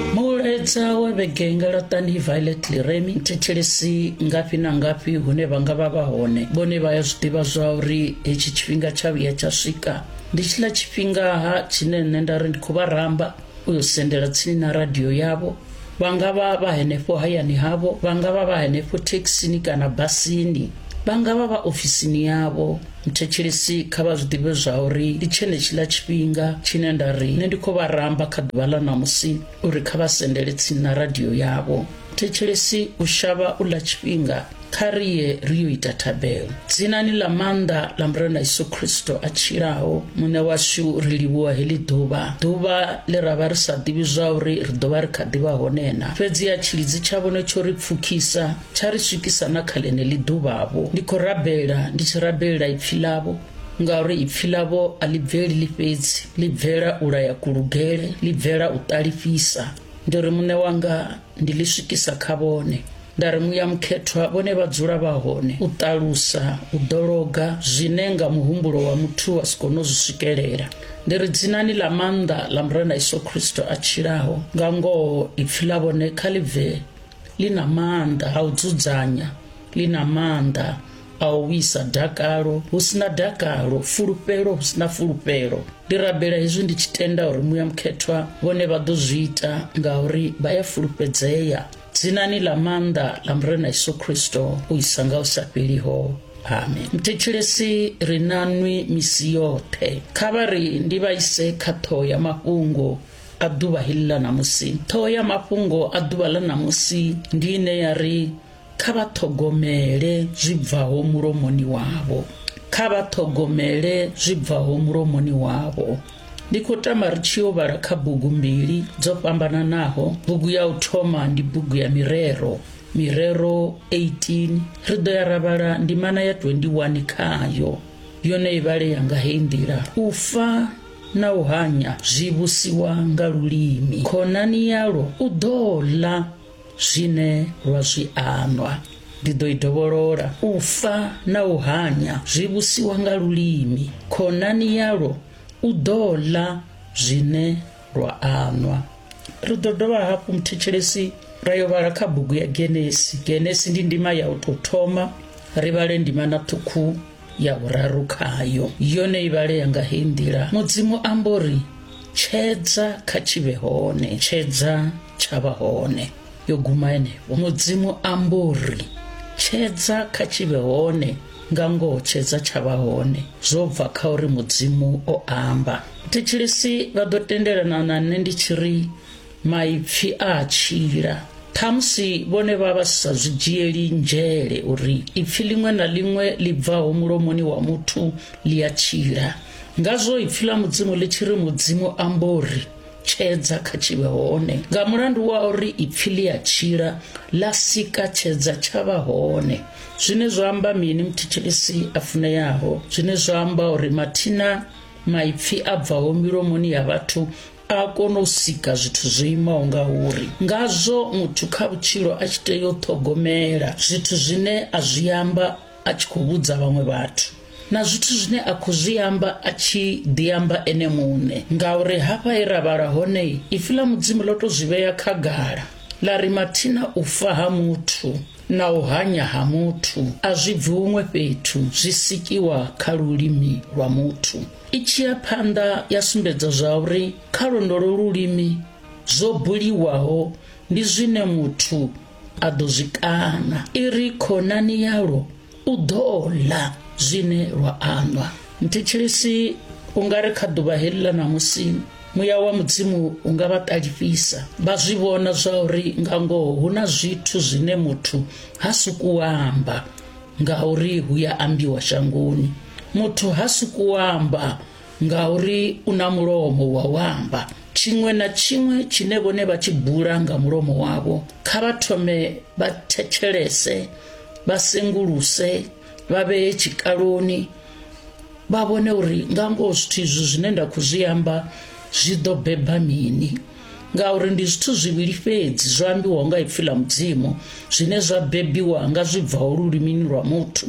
Mulaedza wa vhege nga laṱani Violet Liremi thetshelesi ngafhi na ngafhi hune vha nga vha vha hone vhone vha ya zwiḓivha zwa uri hetshi tshifhinga tsha vhuya tsha swika ndi tshiḽa tshifhinga ha tshine nṋe nda ri ndi khou vha ramba u yo sendela tsini na radio yavho vha nga vha vha henefho hayani havho vha nga vha vha henefho thekhisini kana basini vha nga vha vha ofisini yavho Thetshelesi kha vha zwi ḓivhe zwa uri ndi tshenetshiḽa tshifhinga tshine nda ri nṋe ndi khou vha ramba kha ḓuvha ḽa ṋamusi uri kha vha sendele tsini na radio yavho. Thetshelesi u shavha u ḽa tshifhinga, kha ri ye ri yo ita thabelo. Dzinani ḽa maanḓa ḽa Murena Yesu Kristo a tshilaho, Muṋe washu, ri livhuwa heḽi ḓuvha, ḓuvha ḽe ra vha ri sa ḓivhi zwa uri ri ḓo vha ri kha ḓi vha hone na. Fhedziha tshilidzi tsha vhone tsho ri pfukhisa. Tsha ri swikisa na kha ḽeneḽi ḓuvha-vho. Ndi khou rabela ndi tshi rabelela ipfi ḽavho, ngauri ipfi ḽavho a ḽi bveli ḽi fhedzi, ḽi bvela u laya kulugele, ḽi bvela u ṱalifhisa. Ndi ri Muṋe wanga ndi ḽi swikisa kha vhone. Nda ri muya mukhethwa vhone vha dzula vha hone, u ṱalusa, u ḓologa zwine nga muhumbulo wa muthu wa si kone u zwi swikelela. Ndi ri dzinani ḽa maanḓa ḽa Murena Yesu Kristo a tshilaho, nga ngoho ipfi ḽa vhone kha ḽi bve ḽi na maanḓa a u dzudzanya ḽi na maanḓa a u wisa dakalo hu sina dakalo fulufhelo hu sina fulufhelo ndi rabela hezwi ndi tshi tenda uri muya mukhethwa vhone vha ḓo zwi ita ngauri vha ya fulufhedzea dzinani ḽa maanḓa ḽa murena yesu kristo u isa nga u sa fheliho amen mthetshelesi ri na nwi misi yoṱhe kha vha ri ndi vha ise kha ṱhoho ya mafhungo A ḓuvha heḽi ḽa ṋamusi, ṱhoho ya mafhungo a ḓuvha ḽa ṋamusi ndi ine ya ri kha vha ṱhogomele zwi bvaho mulomoni wavho kha vha ṱhogomele zwi bvaho mulomoni wavho ndi khou tama ri tshi yo vhala kha bugu mbili dzo fhambananaho bugu ya u thoma ndi bugu ya mirero mirero 18 ri ḓo ya ra vhala ndimana ya 21 khayo yone i vhale yanga heyi nḓila u fa na u hanya zwi vhusiwa nga lulimi khonani yalwo u ḓo ḽa zwine lwa zwi anwa ndi ḓo i dovholola u fa na u hanya zwi vhusiwa nga lulimi khonani yalwo u ḓo ḽa zwine lwa anwa ri ḓo dovha hafhu muthetshelesi ra yo vhala kha bugu ya genesi genesi ndi ndima ya u tou thoma ri vhale ndima na ṱhukhu ya vhuraru khayo yone i vhalea nga heyi nḓila mudzimu amba uri tshedza kha tshivhe hone tshedza tsha vha hone yo guma henefho mudzimu amba uri tshedza kha tshivhe hone nga ngoho tshedza tsha vha hone zwo bva kha uri mudzimu o amba thetshelesi vha ḓo tendelana na nṋe ndi tshi ri maipfi a a tshila ṱhamusi vhone vha vha sa zwi dzhieli nzhele uri ipfi ḽiṅwe na ḽiṅwe ḽi bvaho mulomoni wa muthu ḽi a tshila ngazwo ipfi ḽa mudzimu ḽi tshi ri mudzimu ambo ri tshedza kha tshivhe hone nga mulandu wa uri ipfi ḽi a tshila ḽa sika tshedza tsha vha hone zwine zwa amba mini muthetshelesi a funeyaho zwine zwa amba uri mathina maipfi a bvaho milomoni ya vhathu a kona u sika zwithu zwo imaho nga uri ngazwo muthu kha vhutshilo a tshi tea u ṱhogomela zwithu zwine a zwi amba a tshi khou vhudza vhaṅwe vhathu na zwithu zwine a khou zwi amba a tshi ḓi amba ene muṋe ngauri hafha he ra vhala hone ipfi ḽa mudzimu ḽo to zwi vhea khagala ḽa ri mathina u fa ha muthu na u hanya ha muthu a zwi bvi huṅwe fhethu zwi sikiwa kha lulimi lwa muthu I tshi ya phanḓa ya sumbedza zwa uri kha londolo lulimi zwo buliwaho ndi zwine muthu a ḓo zwi kaṋa i ri khonani yalwo u ḓo ḽa zwine lwa aṋwa nthetshelesi u nga ri kha ḓuvha heḽi ḽa ṋamusi muya wa mudzimu u nga vha ṱalifhisa vha zwi vhona zwa uri nga ngoho hu na zwithu zwine muthu ha suku amba ngauri hu ya ambiwa shangoni muthu ha suku amba ngauri u na mulomo wa u amba tshiṅwe na tshiṅwe tshine vhone vha tshi bula nga mulomo wavho kha vha thome vha thetshelese vha senguluse vha vhee tshikaloni vha vhone uri nga ngoho zwithu izwi zwine nda khou zwi amba zwi ḓo beba mini ngauri ndi zwithu zwivhili fhedzi zwo ambiwaho nga ipfi ḽa mudzimu zwine zwa bebiwa nga zwi bvaho lulimini lwa muthu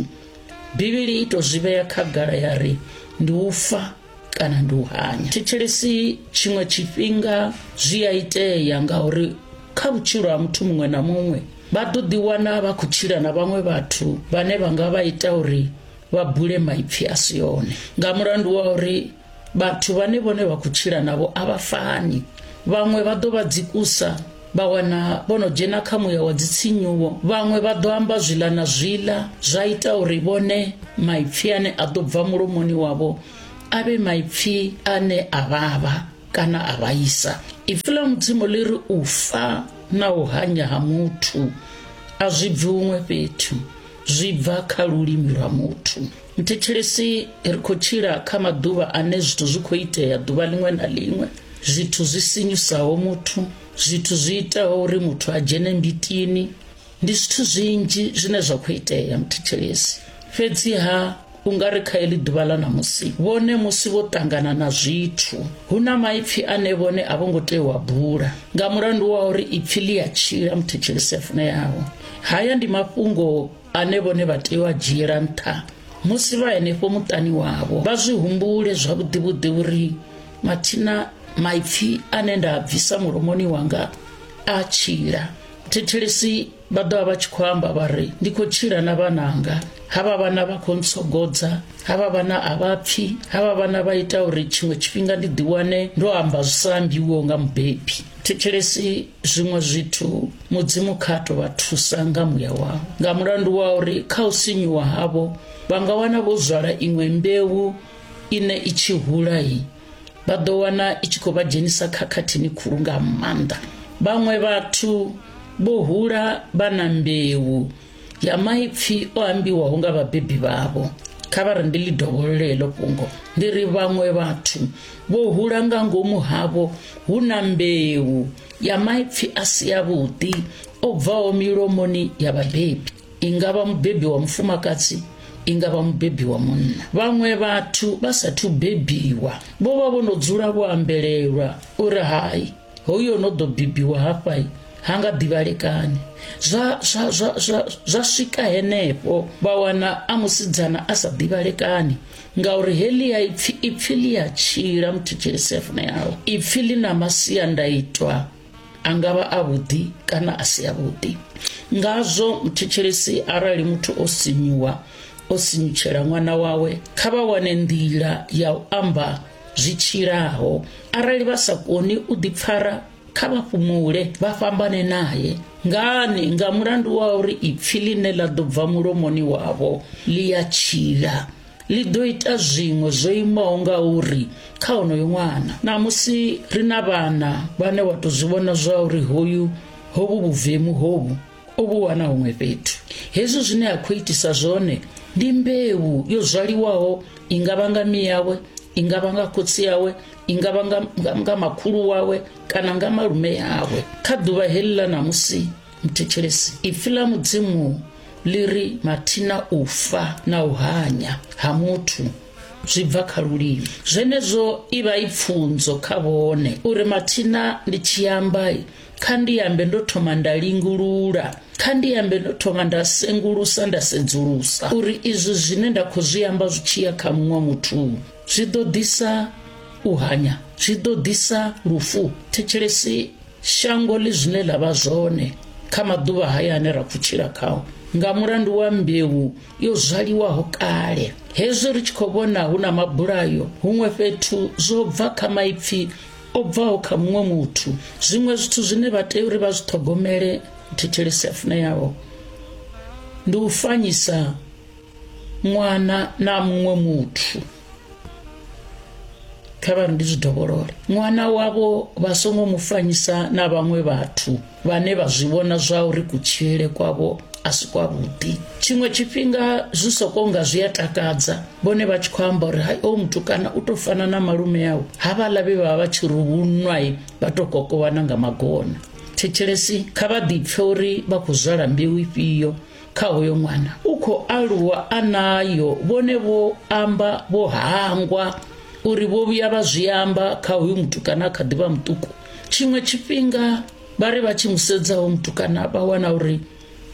bivhili i tou zwi vhea khagala ya ri ndi u fa kana ndi u hanya thetshelesi tshiṅwe tshifhinga zwi a itea ngauri kha vhutshilo ha muthu muṅwe na muṅwe vha ḓo ḓiwana vha khou tshila na vhaṅwe vhathu vhane vha nga vha ita uri vha bule maipfi a si one nga mulandu wa uri vhathu vhane vhone vha khou tshila navho a vha fani vhaṅwe vha ḓo vha dzikusa vha wana vho no dzhena kha muya wa dzitsinyuwo vhaṅwe vha ḓo amba zwiḽa na zwiḽa zwa ita uri vhone maipfi ane a ḓo bva mulomoni wavho a vhe maipfi ane a vhavha kana a vhaisa ipfi ḽa mudzimu ḽi ri u fa na u hanya ha muthu a zwi bvi huṅwe fhethu zwi bva kha lulimi lwa muthu Mthetshelesi ri khou tshila kha maḓuvha ane zwithu zwi khou itea ḓuvha ḽiṅwe na ḽiṅwe zwithu zwi sinyusaho muthu zwithu zwi itaho uri muthu a dzhene mbitini ndi zwithu zwinzhi zwine zwa khou itea mthetshelesi fhedziha u nga ri kha eḽi ḓuvha ḽa ṋamusi vhone musi vho ṱangana na zwithu hu na maipfi ane vhone a vho ngo tea u a bula nga mulandu wa uri ipfi ḽi a tshila mthetshelesi a funeaho haya ndi mafhungo ane vhone vha tea u a dzhiela nṱha musi vha henefho muṱani wavho vha zwi humbule zwavhuḓivhuḓi uri mathina maipfi ane nda a bvisa mulomoni wanga a tshila thithelisi vha ḓo vha vha tshi khou amba vha ri ndi khou tshila na vhananga havha vhana vha khou ntsogodza havha vhana a vha pfi havha vhana vha ita uri tshiṅwe tshifhinga ndi ḓiwane ndo amba zwi sa ambiwiho nga mubebi thetshelesi zwiṅwe zwithu mudzimu kha to vha thusa nga muya wao nga mulandu wa uri kha u sinyuwa havho vha nga wana vho zwala iṅwe mbeu ine i tshi hulayi vha ḓo wana i tshi khou vha dzhenisa khakhathini khulu nga maanḓa vhaṅwe vhathu vho hula vha na mbeu ya maipfi o ambiwaho nga vhabebi vhavho kha vha ri ndi ḽi dovholole heḽo fhungo ndi ri vhaṅwe vhathu vho hula nga ngomu havho hu na mbeu ya maipfi a si yavhuḓi o bvaho milomoni ya vhabebi i nga vha mubebi wa mufumakadzi i nga vha mubebi wa munna vhaṅwe vhathu vha sathu bebiwa vho vha vho no dzula vho ambelelwa uri hai hoyu o no ḓo bibiwa hafha ha nga ḓivhalekani zwa, zwa, zwa, zwa, zwa swika henefho vha wana a musidzana a sa ḓivhalekani ngauri helia ipfi ipfi ḽi a tshila muthu tshele sefuna yawe ipfi ḽi na masiandaitwa a nga vha a vhuḓi kana a si a vhuḓi ngazwo muthetshelesi arali muthu o sinyuwa o sinyutshela ṅwana wawe kha vha wane nḓila ya u amba zwi tshilaho arali vha sa koni u ḓipfara kha vha fhumule vha fhambane naye ngani nga mulandu wa uri ipfi ḽine ḽa ḓo bva mulomoni wavho ḽi ya tshila ḽi ḓo ita zwiṅwe zwo imaho nga uri kha onoyo ṅwana namusi ri na vhana vhane wa tou zwi vhona zwa uri hoyu hovhu vhuvemu hovhu o vhu wana huṅwe fhethu hezwi zwine a khou itisa zwone ndi mbeu yo zwaliwaho i nga vha nga miyawe i nga vha nga khotsi yawe i nga vha nga makhulu wawe kana nga malume yawe kha ḓuvha heḽi ḽa ṋamusi muthetshelesi ipfi ḽa mudzimu ḽi ri mathina u fa na u hanya ha muthu zwi bva kha lulimi zwenezwo i vha i pfunzo kha vhone uri mathina ndi tshiambai Kha ndi ambe ndo thoma nda lingulula, kha ndi ambe ndo thoma nda sengulusa nda sedzulusa uri izwi zwine nda khou zwi amba zwi tshi ya kha muṅwe muthu zwi ḓo ḓisa u hanya, zwi ḓo ḓisa lufu. Thetshelesi shango ḽi zwine ḽa vha zwone kha maḓuvha haya ane ra khou tshila khao nga mulandu wa mbeu yo zwaliwaho kale hezwi ri tshi khou vhona hu na mabulayo huṅwe fhethu zwo bva kha maipfi o bvaho kha muṅwe muthu zwiṅwe zwithu zwine vha tea uri vha zwi ṱhogomele thetshelesi afune yavho ndi u fanyisa ṅwana na muṅwe muthu kha vha ri ndi zwi dovholole ṅwana wavho vha songo mu fanyisa na vhaṅwe vhathu vhane vha zwi vhona zwa uri kutshilele kwavho a si kwavhuḓi tshiṅwe tshifhinga zwi soko nga zwi a takadza vhone vha tshi khou amba uri hai o mutukana u tou fana na malume awu havhaḽa vhe vha vha tshi ruvhunwa vha tou kokovhana nga magona thetshelesi kha vha ḓipfe uri vha khou zwala mbeu ifhio kha hoyo ṅwana u khou aluwa a nayo vhone vho amba vho hangwa uri vho vhuya vha zwi amba kha hoyu mutukana kha ḓivha muṱuku tshiṅwe tshifhinga vha ri vha tshi mu sedzaho mutukana vha wana uri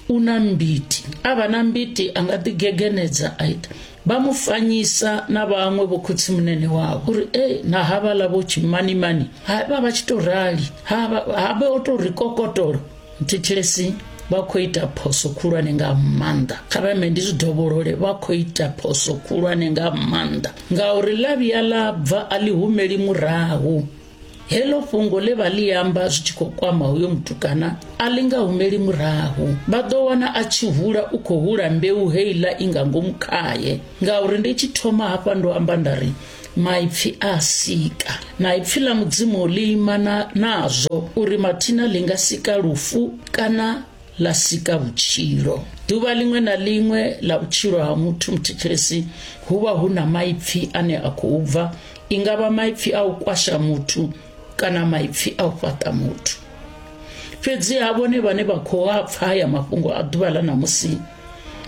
u na mbiti a vha na mbiti a nga ḓigegenedza a ita vha mu fanyisa na vhaṅwe vho khotsi munene wavho uri e na havhaḽa vho tshimanimani ha vha vha tshi tou rali ha vha o tou ri kokotolo thetshelesi vha khou ita phoso khulwane nga maanḓa kha vha ndi zwi dovholole vha khou ita phoso khulwane nga maanḓa ngauri ḽa vhuya ḽa bva a ḽi humeli murahu heḽo fhungo ḽe vha ḽi amba zwi tshi khou kwama hoyo mutukana a ḽi nga humeli murahu vha ḓo wana a tshi hula u khou hula mbeu heiḽa i nga ngomu khaye ngauri ndi tshi thoma hafha ndo amba nda ri maipfi a sika na ipfi ḽa mudzimu ḽi imana nazwo uri mathina ḽi nga sika lufu kana ḽa sika vhutshilo ḓuvha ḽiṅwe na ḽiṅwe ḽa vhutshilo ha muthu muthetshelesi hu vha hu na maipfi ane a khou bva i nga vha maipfi a u kwasha muthu kana maipfi a u fhaṱa muthu fhedzi ha vhone vhane vha khou a pfa haya mafhungo a ḓuvha ḽa ṋamusi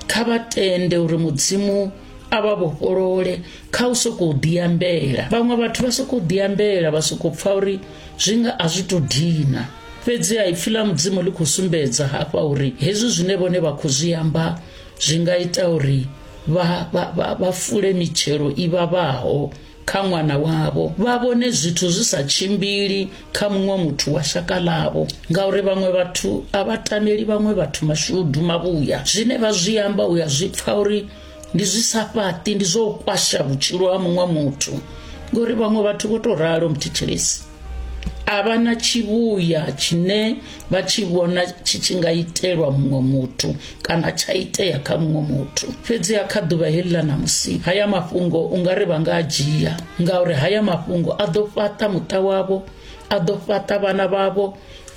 kha vha tende uri mudzimu a vha vhofholole kha u sokou ḓiambela vhaṅwe vhathu vha sokou ḓiambela vha sokou pfa uri zwi nga a zwi tou dina fhedzi a ipfi ḽa mudzimu ḽi khou sumbedza hafha uri hezwi zwine vhone vha khou zwi amba zwi nga ita uri vha, vha, vha, vha fule mitshelo i vhavhaho kha ṅwana wavho vha vhone zwithu zwi sa tshimbili kha muṅwe muthu wa shaka ḽavho ngauri vhaṅwe vhathu a vha tameli vhaṅwe vhathu mashudu mavhuya zwine vha zwi amba u ya zwi pfa uri ndi zwi sa fhaṱi ndi zwo kwasha vhutshilo ha muṅwe muthu ngori vhaṅwe vhathu vho to ralo mthetshelesi a vha na tshivhuya tshine vha tshi vhona tshi tshi nga itelwa muṅwe muthu kana tsha itea kha muṅwe muthu fhedziha kha ḓuvha heḽi ḽa ṋamusi haya mafhungo u nga ri vha nga a dzhia ngauri haya mafhungo a ḓo fhaṱa muṱa wavho a ḓo fhaṱa vhana vhavho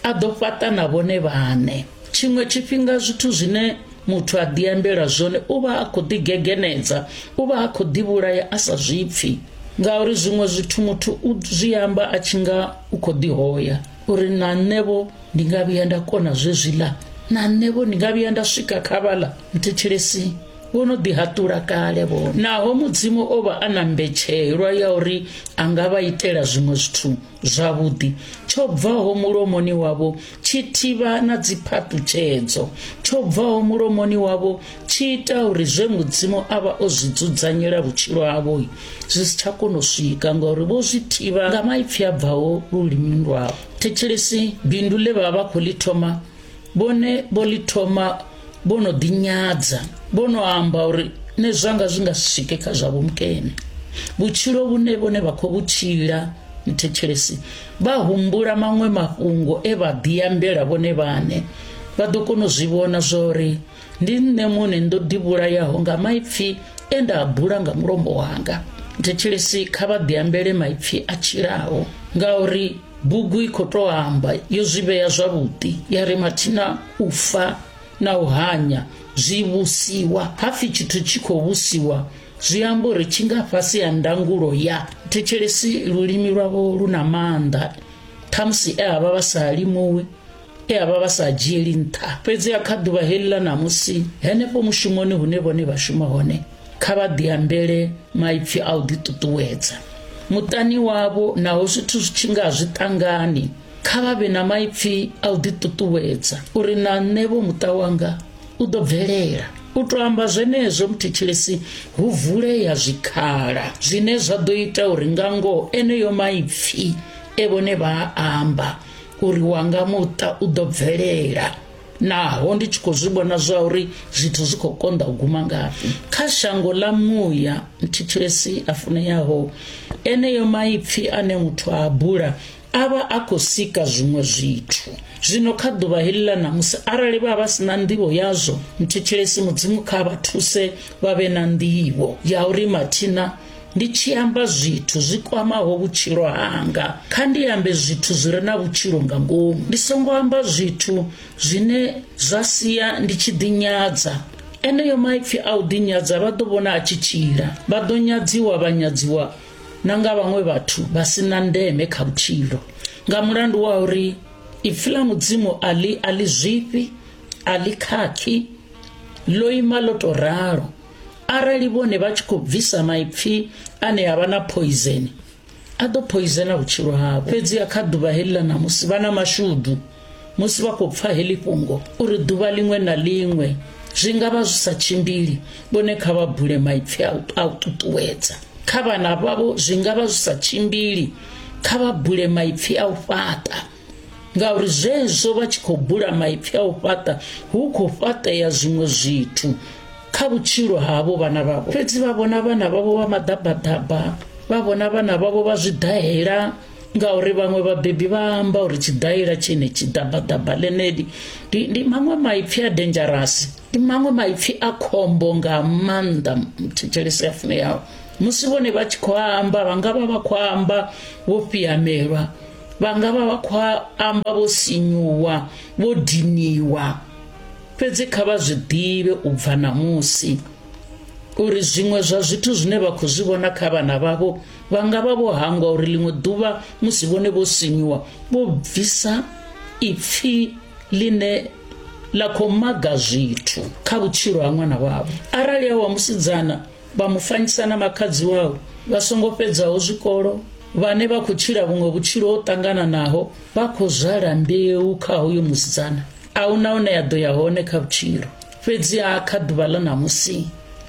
a ḓo fhaṱa na vhone vhaṋe tshiṅwe tshifhinga zwithu zwine muthu a ḓiambela zwone u vha a khou ḓigegenedza u vha a khou ḓivhulaya a sa zwipfi ngauri zwiṅwe zwithu muthu u zwi amba a tshi nga u khou ḓihoya uri na nṋevho ndi nga vhuya nda kona zwezwiḽa na nṋevho ndi nga vhuya nda swika kha vhaḽa mthetshelesi vho no ḓihaṱula kale vho naho mudzimu o vha a na mbetshelwa ya uri a nga vha itela zwiṅwe zwithu zwavhuḓi tsho bvaho mulomoni wavho tshi thivha na dziphaṱutshedzo tsho bvaho mulomoni wavho tshi ita uri zwe mudzimu a vha o zwi dzudzanyela vhutshilo havho zwi si tsha kona u swika ngauri vho zwi thivha nga maipfi a bvaho lulimini lwavho thetshelesi bindu ḽe vha vha khou ḽi thoma vhone vho ḽi thoma vho no ḓinyadza vho no amba uri nṋe zwanga zwi nga si swike kha zwa vhumkene vhutshilo vhune vhone vha khou vhutshila mthetshelesi vha humbula maṅwe mafhungo e vha ḓiambela vhone vhane vha ḓo kona u zwi vhona zwa uri ndi nṋe muṋe ndo ḓivhulayaho nga maipfi e nda a bula nga mulomo wanga thetshelesi kha vha ḓiambele maipfi a tshilaho ngauri bugu i khou tou amba yo zwi vhea zwavhuḓi ya ri mathina u fa na u hanya zwi vhusiwa hapfi tshithu tshi khou vhusiwa zwi amba uri tshi nga fhasi ha ndangulo ya thetshelesi lulimi lwavho lu na maanḓa khamusi e havha vha sa limuwi e a vha vha sa dzhieli nṱha fhedziha kha ḓuvha heḽi ḽa ṋamusi henefho mushumoni hune vhone vha shuma hone kha vha ḓiambele maipfi a u ḓiṱuṱuwedza muṱani wavho naho zwithu zwi tshi nga zwi ṱangani kha vha vhe na maipfi a u ḓiṱuṱuwedza uri na nṋe vho muṱa wanga u ḓo bvelela u to amba zwenezwo muthetshelesi hu vulea zwikhala zwine zwa ḓo ita uri nga ngoho eneyo maipfi e vhone vha amba uri wanga muṱa u ḓo bvelela naho ndi tshi khou zwi vhona zwa uri zwithu zwi khou konḓa u guma ngafhi kha shango ḽa muya thithelesi a funeyaho eneyo maipfi ane muthu a bula a vha a khou sika zwiṅwe zwithu zwino kha ḓuvha heḽi ḽa ṋamusi arali vha vha si na nḓivho yazwo mthetshelesi mudzimu kha vha thuse vha vhe na nḓivho ya uri mathina ndi tshi amba zwithu zwi kwamaho vhutshilo hanga kha ndi ambe zwithu zwi re na vhutshilo nga ngomu ndi songo amba zwithu zwine zwa sia ndi tshi ḓinyadza eneyo maipfi a u ḓinyadza vha ḓo vhona a tshi tshila vha ḓo nyadziwa vha nyadziwa na nga vhaṅwe vhathu vha si na ndeme kha vhutshilo nga mulandu wa uri ipfi ḽa mudzimu a ḽi a ḽi zwifhi a ḽi khakhi ḽo ima ḽo tou ralo arali vhone vha tshi khou bvisa maipfi ane a vha na poizeni a ḓo poizena vhutshilo havho fhedzi a kha ḓuvha heḽi ḽa ṋamusi vha na mashudu musi vha khou pfa heḽi fhungo uri ḓuvha ḽiṅwe na ḽiṅwe zwi nga vha zwi sa tshimbili vhone kha vha bule maipfi a u ṱuṱuwedza kha vhana vhavho zwi nga vha zwi sa tshimbili kha vha bule maipfi a u fhaṱa ngauri zwezwo vha tshi khou bula maipfi a u fhaṱa hu khou fhaṱea zwiṅwe zwithu kha vhutshilo havho vhana vhavho fhedzi vha vhona vhana vhavho vha maḓabaḓaba vha vhona vhana vhavho vha zwiḓahela ngauri vhaṅwe vhabebi vha amba uri tshiḓahela tshine tshiḓabaḓaba ḽeneli ndi, ndi maṅwe maipfi a dangerous ndi maṅwe maipfi a khombo nga maanḓa thetshelesi ya funeyaho musi vhone vha tshi khou amba vha nga vha vha khou amba vho fhiyamelwa vha nga vha vha khou amba vho sinyuwa vho diniwa fhedzi kha vha zwi ḓivhe u bva ṋamusi uri zwiṅwe zwa zwithu zwine vha khou zwi vhona kha vhana vhavho vha nga vha vho hangwa uri ḽiṅwe ḓuvha musi vhone vho sinyuwa vho bvisa ipfhi ḽine ḽa khou maga zwithu kha vhutshilo ha ṅwana wavho arali a wa musidzana vha mu fanyisa na makhadzi wawe vha songo fhedzaho zwikolo vhane vha khou tshila vhuṅwe vhutshilo ho ṱangananaho vha khou zwala mbeu kha hoyo musidzana a hu na hune ya ḓo ya hone kha vhutshilo fhedziha kha ḓuvha ḽa ṋamusi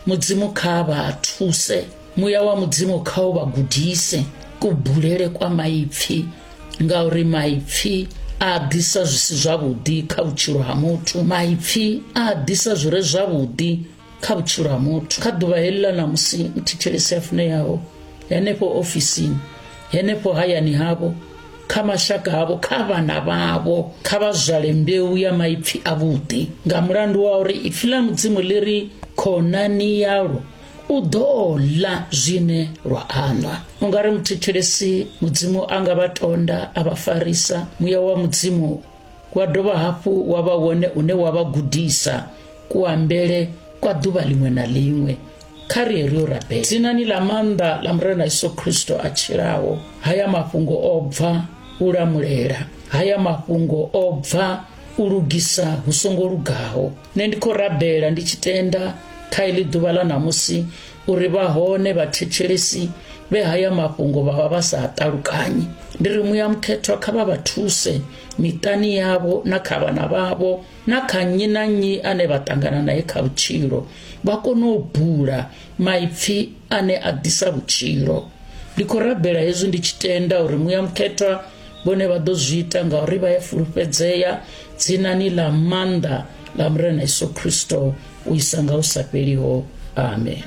mudzimu kha vha thuse muya wa mudzimu kha u vha gudise kubulele kwa maipfi ngauri maipfi a ḓisa zwi si zwavhuḓi kha vhutshilo ha muthu maipfi a ḓisa zwi re zwavhuḓi kha vhutshilo ha muthu kha ḓuvha heḽila na musi muthetshelesi a funeaho henefho ofisini henefho hayani havho kha mashaka havho kha vhana vhavho kha vha zwale mbeu ya maipfi a vhuḓi nga mulandu wa uri ipfi ḽa mudzimu ḽi ri khonani yalo u ḓo ḽa zwine lwa aṋwa u nga ri muthetshelesi mudzimu a nga vha tonda a vha farisa muya wa mudzimu wa dovha hafhu wa vha wone une wa vha gudisa kuambele kwa ḓuvha ḽiṅwe na ḽiṅwe kha ri ri yo rabela dzinani ḽa maanḓa ḽa murena yesu khristo a tshilaho haya mafhungo o bva u lamulela haya mafhungo o bva u lugisa hu songo lugaho nṋe ndi khou rabela ndi tshi tenda kha iḽi ḓuvha ḽa ṋamusi uri vha hone vhathetshelesi vhe haya mafhungo vha vha vha sa ṱalukanyi ndi ri muya mukhethwa kha vha vha thuse miṱani yavho na kha vhana vhavho na kha nnyi na nnyi ane vha ṱangana naye kha vhutshilo vha kone u bula maipfi ane a ḓisa vhutshilo ndi khou rabela hezwi ndi tshi tenda uri muya mukhethwa vhone vha ḓo zwi ita ngauri vha ya fulufhedzea dzinani ḽa maanḓa nga murena yesu khristo u isa nga u sa fheliho amen